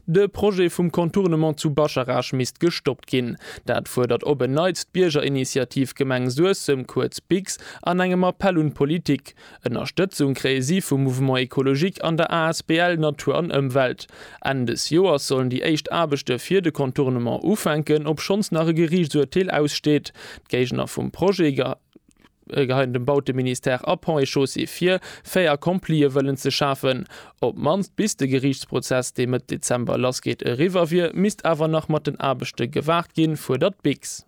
De Projet vum Contournement zu Bascharage misst gestoppt ginn. Dat fuerdert op en Neits d'Biergerinitiativ Gemeng Suessem, kuerz BIGS, an engem Appell un d'Politik. Ënnerstëtzung kréie si vum Mouvement Ecologique an der Asbl Natur an Ëmwelt. Enn des Joers sollen déi éischt Aarbechte fir de Contournement ufänken, obschonns nach e Geriichtsurteel aussteet. D'Géigner vum Projet. Geheit dem Bauteministère a Ponts et Chaussées vir, fait accomplie wëllen ze schafen. Op d'mannst bis de Geriichtsprozess, dee Mëtt Dezember lassgeet, eriwwer wier, misst awer nach mat den Aarbechte gewaart ginn, fuerdert d'Biks.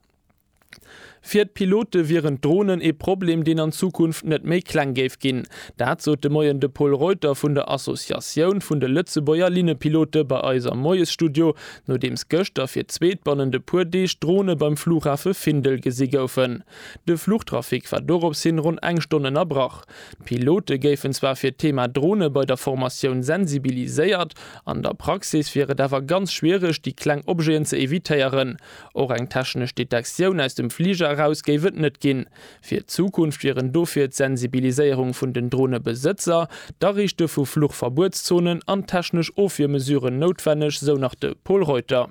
Fir d'Pilote wieren d'Dronen ee Problem, deen an Zukunft net méi kleng géif ginn. Dat sot de Moien de Paul Reuter vun der Associatioun vun de Lëtzebuerger Linnepilote bei eis am Moiesstudio, nodeems gëschter fir d'zweet bannent e puer Deeg Drone beim Flughafe Findel gesi goufen. De Fluchtrafic war doropshin ronn eng Stonn ënnerbrach. D'Pilote géifen zwar fir d'Thema Drone bei der Formatioun sensibiliséiert, an der Praxis wier et awer ganz schwiereg, déi kleng Objeten ze evitéieren. Och eng technesch Detektioun aus dem Fliger eraus géif et net ginn. Fir d'Zukunft wieren dofir d'Sensibiliséierung vun den Dronebesëtzer, d'Ariichte vu Fluchverbuetszonen an technesch Ofwiermesuren noutwenneg, sou nach de Pol Reuter.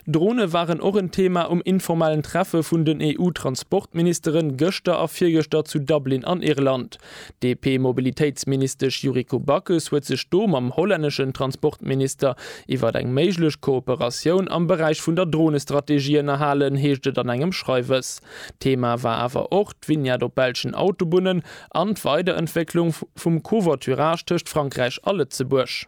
Drone waren och en Thema um informellen Treffe vun den EU-Transportministere gëschter a virgëschter zu Dublin an Irland. D'DP-Mobilitéitsministesch Yuriko Backes huet sech do mam hollänneschen Transportminister iwwer eng méiglech Kooperatioun am Beräich vun der Dronestrategie ënnerhalen, heescht et an engem Schreiwes. Thema war awer och d'Vignette op belschen Autobunnen an d'Weiderentwécklung vum Covoiturage tëscht Frankräich a Lëtzebuerg.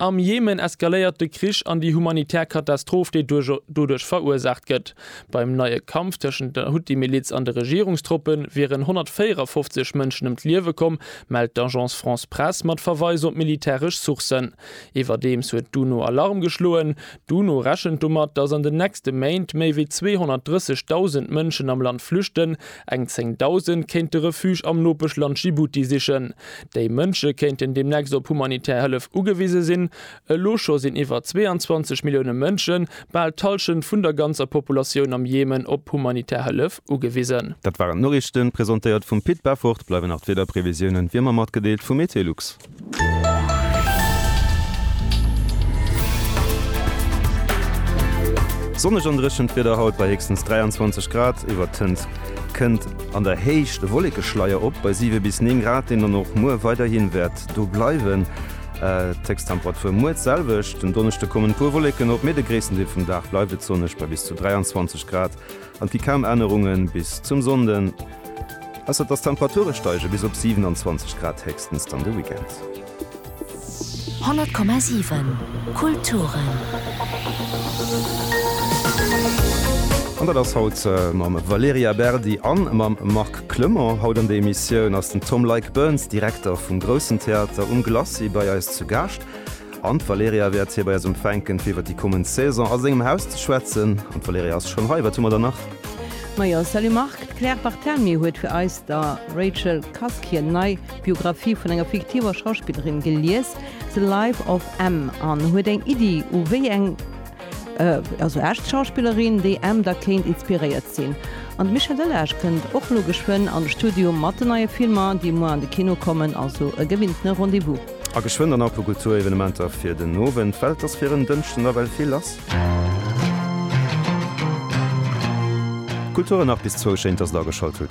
Am Jemen eskaléiert de Krich an déi humanitär Katastroph, déi doduerch verursaacht gëtt. Beim neie Kampf tëschent der Huthi-Miliz an de Regierungstroppe wieren 154 Mënschen ëm d'Liewe komm, mellt d'Agence France-Presse mat Verweis op militäresch Sourcen. Iwwerdeems huet d'UNO Alarm geschloen. D'UNO rechent domat, datt an den nächste Méint méi wéi 230.000 Mënschen am Land flüchten, Eng 10.000 kéinte Refuge am Nopeschland Djibouti sichen. Déi Mënsche kéinten deemnächst op humanitär Hëllef ugewise sinn. Elo scho sinn iwwer 22 Millioune Mënschen, bal d'Hallschent vun der ganzer Populatioun am Jemen, op humanitär Hëllef ugewisen. Dat waren d'Noriichten, presentéiert vum Pit Beffort. Bleiwen nach d'Wiederprevisiounen, wéi ëmmer matgedeelt, vu Meteolux. Sonneg an dréchent Wieder haut bei héchstens 23 Grad. Iwwertënt kënnt an der Héicht e Wollekeschleier op bei 7 bis 9 Grad, deen dann och muer weiderhi wäert do bleiwen. D'Héchsttemperature muer d'selwecht. Den Donneschde kommen e puer Wolleken op, mee de gréissten Deel vum Dag bleift et sonneg bei bis zu 23 Grad. An et gi kaum Ännerungen bis zum Sonnden, ausser dass d'Temperature steige bis op 27 Grad héchstens dann de Weekend. 100,7 Kulturen. An dat ass haut mam Valerija Berdi a mam Marc Clement. Haut an der Emissioun ass den Tom Leick-Burns, Direkter vum Groussen Theater um Glacis, bei eis zu Gaascht. An d'Valerija wäert hir bei eis empfänken, fir iwwer déi kommend Saison a sengem Haus ze schwätzen. An d'Valerija ass schonn hei. Wat hu mer dann nach? Ma jo, salut Marc, d'Claire Barthelmy huet fir eis der Rachel Cusk hir nei Biographie vun enger fiktiver Schauspillerin gelies, The Life of M. An huet eng Iddi, u wéi eng, also echt Schauspillerin, déi M da kéint inspiréiert sinn. An de Michel Delage kënnt och elo geschwënn an de Studio mat den neie Filmer, déi muer an de Kino kommen, also e gewinntene Rendez-vous. A geschwënn dann apu Kulturevenementer fir den Owend, well et ass fir en Dënschden nawell vill lass. Kultur nach bis zwou, schéin dass der ageschalt hutt.